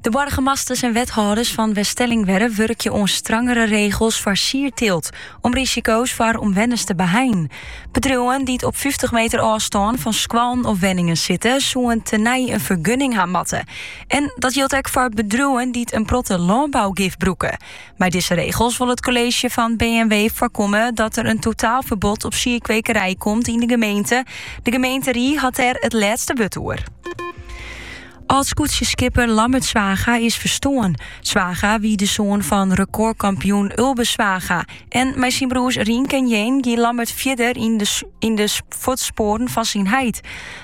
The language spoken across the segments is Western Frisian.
De boargemasters en wethâlders fan Weststellingwerf wurkje oan strangere regels foar sierteelt om risiko's foar omwenners te beheinen. Bedriuwen dy't op fyftich meter ôfstân fan skoallen of wenningen sitte, soene tenei in fergunning ha moatte. En dat jildt ek foar bedriuwen dy't in protte lânbougif brûke. Mei dizze regels wol it kolleezje fan B en W foarkomme dat der in totaalferbod op sierkwekerij komt yn de gemeente. De gemeenterie hat dêr it lêste wurd oer. Ald-skûtsjeskipper Lammert Zwaga is ferstoarn. Zwaga wie de soan fan rekôrkampioen Ulbe Zwaga. En mei syn broers Rienk en Jeen gie Lammert fierder yn de, yn de fuotspoaren fan syn heit.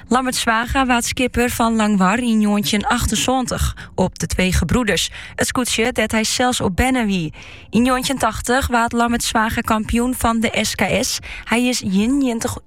Lammert Zwaga waard skipper fan Langwar yn njoggentjinachtensantich op De Twee Gebroeders, it skûtsje dêr't hy sels op berne wie. Yn njoggentjintachtich waard Lammert Zwaga kampioen fan de SKS. Hy is